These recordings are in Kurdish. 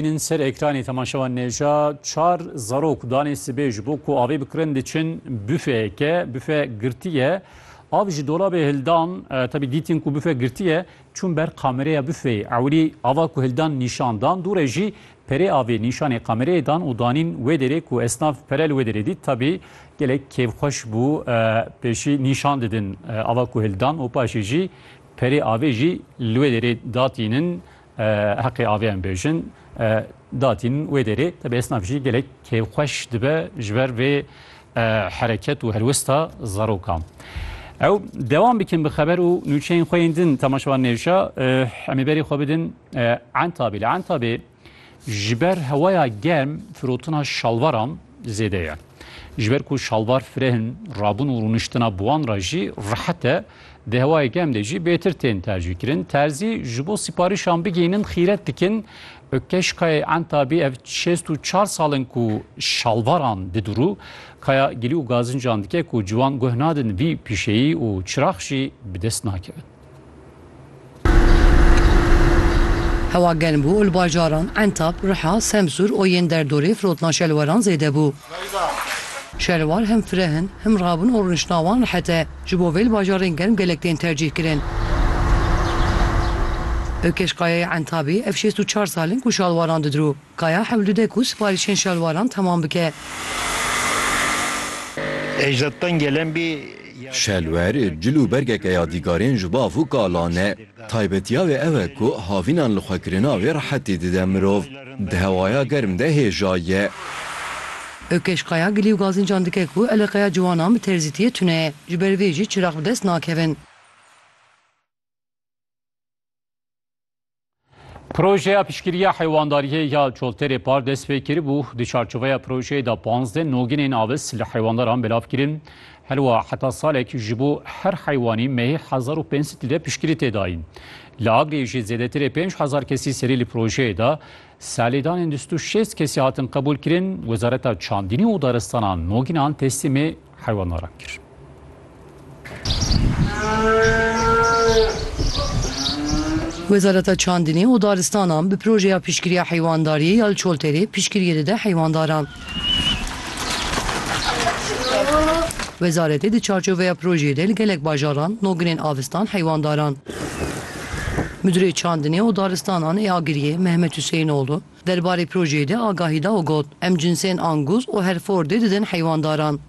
Hînin ser ekranê temaşewan nêja çar zarok danê sibê ji bo ku avê bikirin diçin bufeyeke. Bufe girtî ye. Av ji dolabê hildan tevî dîtin ku bufe girtî ye çûn ber kamereya bufeyê. Ewilî ava ku hildan nîşan dan dû re jî perê avê nîşanê kamereyê dan û danîn wê derê ku esnaf pere li wê derê dît tevî gelek kêfxweş bû pêşî nîşan didin ava ku hildan û paşê jî perê avê jî li wê derê datînin Heqê avê em bêjin datîn wê derê te bi esnaf jî gelek kêfxweş dibe ji ber vê hereket û helwesta zarokan. Ew dewam bikin bi xeber û nûçeyên xwe yên din temaşevan nêşa em ê berê xwe bidin entabê li entabê ji ber hewaya germ firotina şalvaran zêde ye. Ji ber ku şalvar firehin rabûn û rûniştina bi wan re jî rehet e. Di hewayê germ de jî bêtir tên tercîkirin. Terzî ji bo sîparîşan bigihînin xîret dikin. Ökkeş Kayayê Entabî ev şêst û çar sal in ku şalvaran didurû. Kaya gilî û gazincan dike ku ciwan guh nadin vî pîşeyî û çirax jî bi dest nakevin. Hewa germ bû û li bajaran Entab, Riha, Semsûr û yên derdorê firotna şelweran zêde bû. Şelwar him fireh in, him rabûn û rûniştina wan rehet e. Ji bo vê li bajarên germ gelek tên tercîh kirin. Ökeş Kayayê Entabê ev şêst û çar sal in ku şalwaran didirû. Kaya hewlide ku siparîşên şalwaran temam bike. Ejdatdan gelen bî. Şelwer, cil û bergeke yadîgarên ji bo avû kala ne. Taybetiya wê ew e ku havînan li xwe kirina wê rehetî dide mirov. Di hewaya germ de hêja ye. Ökeş Kaya gilî û gazincan dike ku eleqeya ciwanan bi terzîtiyê tune ye, ji ber vê jî çirax bi dest nakevin. Projeya piştgiriya heywandariyê ya Çolterê Par dest pê kiribû. Di çarçoveya projeyê de panzdeh noginên avis li heywandaran belav kirin. Herwa heta salek ji bo her heywanî mehê hezar û pênc sed lîre piştgirî tê dayîn. Li Agiriyê jî zêdetirê pênc hezar kesî serî li projeyê de salêdanên du sed û şêst kesî hatin qebûlkirin. Wezareta Çandînî û Daristanan nogînan teslîmê Heywana ram kir. Wezareta Çandinê û Daristanan bi projeya piştgiriya heywandariyê ya li Çoltêrê piştgiriyê dide heywandaran. Wezaretê di çarçoveya projeyê de li gelek bajaran noginên avistan heywandaran. Midurê Çandinê û Daristanan ê Agiriyê Mehmet Huseyinoğlu, Derbarê projeyê de agahî da û got, Em cinsên Angus û Herefordê didin heywandaran.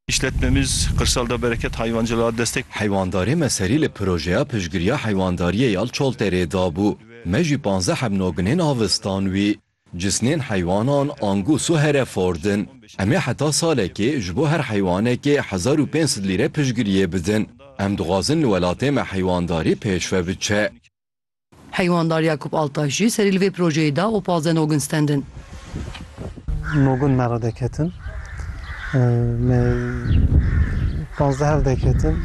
Îşletmemiz Qirsal da bereket hayvancılığa destek. Heywandarê me serî li projeya piştgiriya heywandariyê ya li Çolterê dabû. Me jî panzdeh hevnoginên avistan wî. Cisnên heywanan Angus û Hereford in. Em ê heta salekê ji bo her heywanekê hezar û pênc sed lîre piştgiriyê bidin. Em dixwazin li welatê me heywandarî pêşve biçe. Heywanddar Yakup Altaş jî serî li vê projeyê da û pazdeh nogin stendin. Nogin me re deketin. Me pazdeh hev deketin.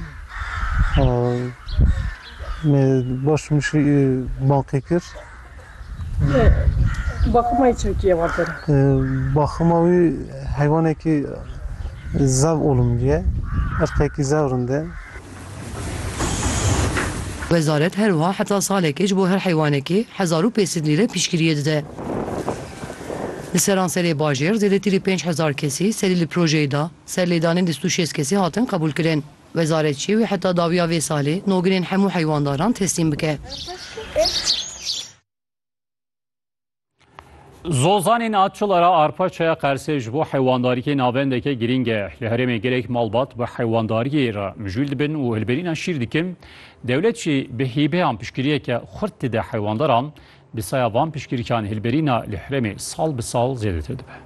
Me baş mişî baqî kir. Baxima wî çi bikî êvar kir? Baxima wî heywanekî zev olumlî ye. Irqekî zew rind e. Wezaret her wiha heta salekê ji bo her heywanekê hezar û pênc sed lîre piştgiriyê dide. Li seranserê bajêr zêdetî li pênc hezar kesî serî li projeyê da, ser lêdanên lîst û şêst kesî hatin qebûlkirin. Wezaret jî wê heta dawiya vê salê noginên hemû heywandaran teslîm bike. Zozanên a çila ra arpaçaya qersê ji bo heywandariyê navendeke girîng e. Li herêmê gelek malbat bi heywandariyê re mijûl dibin û hilberîna şîr dikin. Dewlet jî bi hîbeyan piştgiriyeke xurt dide heywandaran. Bi saya van piştgirikan hilberîna li herêmê sal bi sal zêdetir dibe.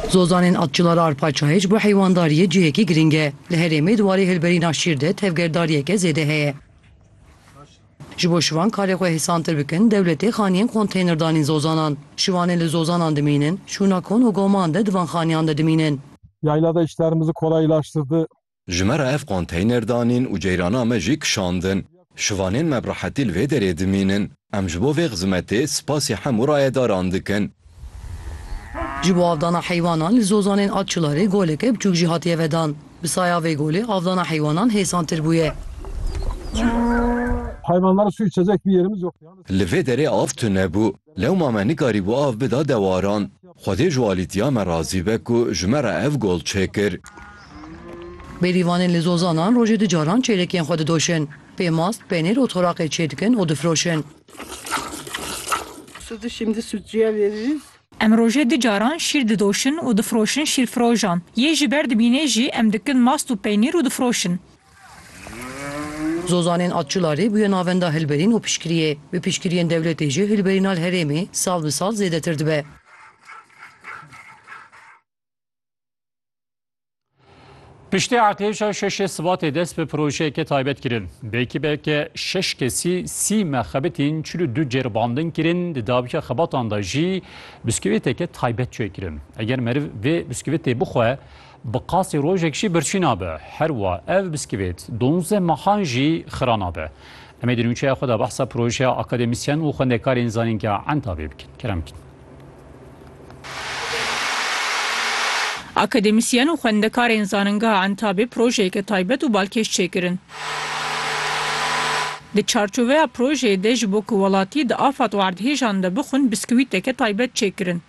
Zozanên a çila ra arpaçayê ji bo heywandariyê cihekî girîng e. Li herêmê di warê hilberîna şîr de tevgerdariyeke zêde heye. Ji bo şivan karê xwe hêsantir bikin, dewletê xaniyên konteyner danîn zozanan. Şivanê li zozanan dimînin, şûna kon û goman de di van xaniyan de dimînin. Yayla de işlerimizi kolaylaştırdı. Ji me re ev konteyner danîn û ceyrana me jî kişandin. Şivanên me bi rehetî li vê derê dimînin. Em ji bo vê xizimetê spasî hemû rayedaran dikin. Ji bo avdana heywanan li Zozanên a Çilarê goleke biçûk jî hatiye vedan. Bi saya vê golê avdana heywanan hêsantir bûye. Li vê derê av tune bû. Lewma me nikarîbû av bida dewaran. Xwedê ji alîtiya me razî be ku ji me re ev gol çêkir. Bêrîvanên li Zozanan rojê du caran çêrek yên xwe didoşin. Pêmast, penêr û toraqê çêdikin û difiroşin. Sudu şimdi sucuya veririz. Em rojê du caran şîr didoşin û difiroşin şîrfirojan. Yê ji ber dimînê jî em dikin mast û peynîr û difiroşin. Zozanên Atçularî bûye navenda hilberîn û piştgiriyê. Bi piştgiriyên dewletê jî hilberîna li herêmê sal bi sal zêdetir dibe. Piştî eqlêşa şeşê sibatê dest bi projeyeke taybet kirin. Bi ekîbeke şeş kesî sî mexebitîn çil û du cêrbandin kirin, di dawiya xebatan de jî biskûvîteke taybet çêkirin. Eger meriv vê biskûvîtê bixwe, bi qasî rojek jî birçî nabe. Herwa ev biskûvît donzdeh mehan jî xira nabe. Em ê di nûçeya xwe de behsa projeya akademîsyen û xwendekarên zanîngeha Entavê bikin. Kerem bikin. Akademîsyen û xwendekarên Zaningeha Entabê projeyeke taybet û balkêş çêkirin. Di çarçoveya projeyê de ji bo ku welatî di afat û erdhêjan de bixwin biskûwîteke taybet çêkirin.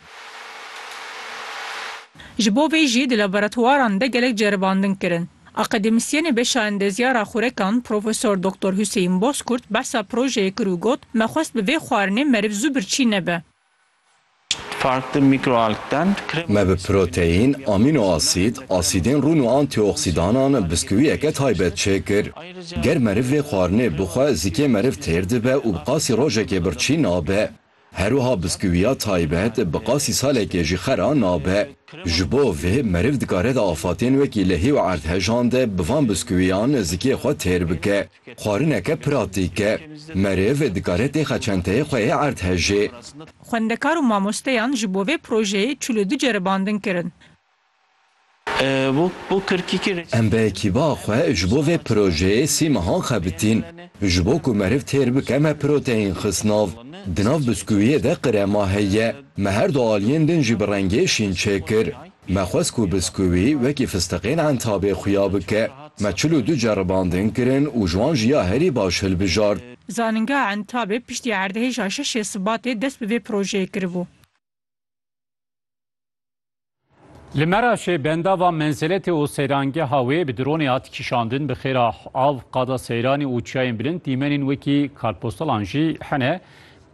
Ji bo vê jî di laboratwaran de gelek ceribandin kirin. Akademîsyenê beşa endezyara xurekan Profesor Doktor Huseyîn Bozkurt behsa projeyê kir û got, Me xwest bi vê xwarinê meriv zû birçî nebe. Me bi proteîn, amînoasîd, asîdên rûn û antîoksîdanan biskûwiyeke taybet çêkir. Ger meriv vê xwarinê bixwe zikê meriv têr dibe û bi qasî rojekê birçî nabe. Herwiha biskûwiya taybet bi qasî salekê jî xera nabe. Ji bo vê meriv dikare di afatên wekî lehî û erdhejan de bi van biskûwiyan zikê xwe têr bike. Xwarineke pratîk e. Meriv dikare têxa çenteyê xwe yê erdhejê. Xwendekar û mamosteyan ji bo vê projeyê çil û du ceribandin kirin. Em bi ekîba xwe ji bo vê projeyê sî mehan xebitîn. Ji bo ku meriv têr bike me proteyîn xist nav. Di nav biskûwiyê de qirema heye. Me her du aliyên din jî bi rengê şîn çêkir. Me xwest ku biskûwî wekî fistiqên Entabê xuya bike. Me çil û du ceribandin kirin û ji wan jî ya herî baş hilbijart. Zanîngeha Entabê piştî erdhêja şeş ê Sibatê dest bi vê projeyê kiribû. Li Meraşê bendava menzeletê û seyrangeha wê bi dronê hat kişandin bi xêra av qada seyranê û çiyayên bilind dîmenên wekî kartpostalan jî hene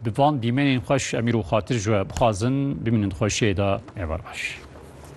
bi van dîmenên xweş em îro xatir ji we bixwazin bimînin di xweşiyê de ne ber baş.